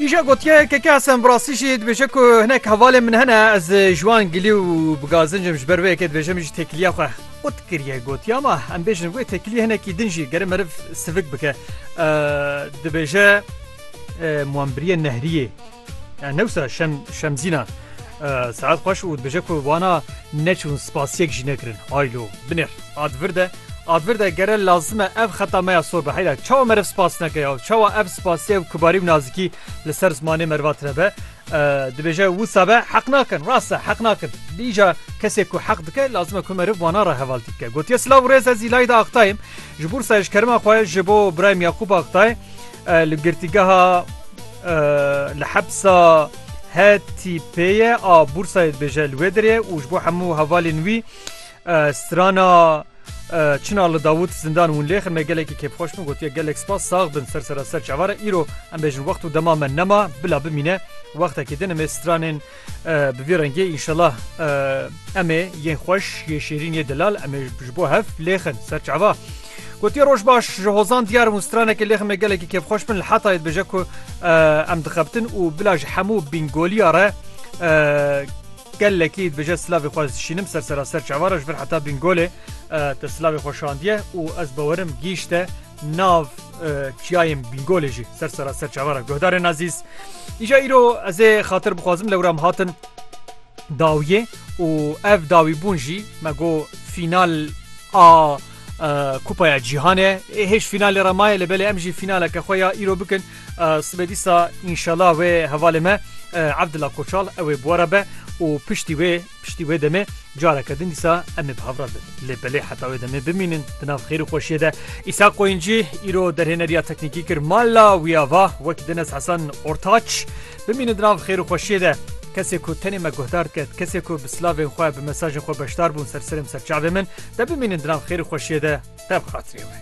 Îşa gotiye keke Hesen bi rastî jî dibêje ku hinek hevalên min hene ez ji wan gilî û bi gazincim ji ber wê yekê dibêje min jî têkiliya xwe ot kiriye gotiye ma em bêjin wê têkilî hinekî din jî gere meriv sivik bike dibêje muembiriyê nehriyê Yani newsa şem şemzîna saet xweş û dibêje ku wana neçûn spasiyek jî nekirin. Haylo binêr ad vir de ad vir de gere lazime ev xeta me ya sor be heyla çawa meriv spas neke ya çawa ev spasiye û kibarî û nazikî li ser zimanê meriva tine be dibêje wisa be heq nakin rasta heq nakin dîja kesê ku heq dike lazime ku meriv wana re hevaltî bike gotiye silav rêz ez îlayî de aqtayim ji bûrsa ji kerima xwe ji bo birayim Yaqûb Aqtay li girtîgeha Li hepsa HTP'ê a Bursayê dibêje li wê derê û ji bo hemû hevalên wî strana Çina li Dawût zindan hûn lê xirme gelekî kêfxweş bû gotiye gelek spas sax bin ser sera ser çavara îro em bêjin wext û dema me nema bila bimîne wextekî din em ê stranên Bi vî rengê înşelah em ê yên xweş yê şêrîn yê delal em ê ji bo hev lêxin ser çava. Gotiye roj baş ji hozan diyar û stranekê lêxin me gelekî kêfxweş bin li hetayê dibêje ku em dixebtin û bila ji hemû bîngoliya re gelekî dibêje silavê xwe dişînim ser sera ser çava re ji vir heta bîngolê te silavê xwe şandiye û ez bawerim gîşte nav çiyayên Bîngolê jî ser sera ser çavara guhdarên azîz. Îja îro ez ê xatir bixwazim lewram hatin dawiyê û ev dawîbûn jî me got fînal a Kupaya Cîhanê ê hêj fînalê re maye li belê em jî fînaleke xwe ya îro bikin sibê dîsa înşala wê hevalê me Abdullah Koçal ew ê bora be û piştî wê Piştî wê demê careke din dîsa em ê bi hev re bin. Lê belê heta wê demê bimînin di nav xêr û xweşiyê de. Îshak Qoyuncî îro derhêneriya teknîkî kir mala wî ya va wek Denes Hesen Ortaç bimînin di nav xêr û xweşiyê de. Kesê ku tenê me guhdar diket, kesê ku bi silavên xwe, bi mesajên xwe beşdar bûn ser serê min, ser çavê min, de bimînin di nav xêr û xweşiyê de, te bi xatirê wê.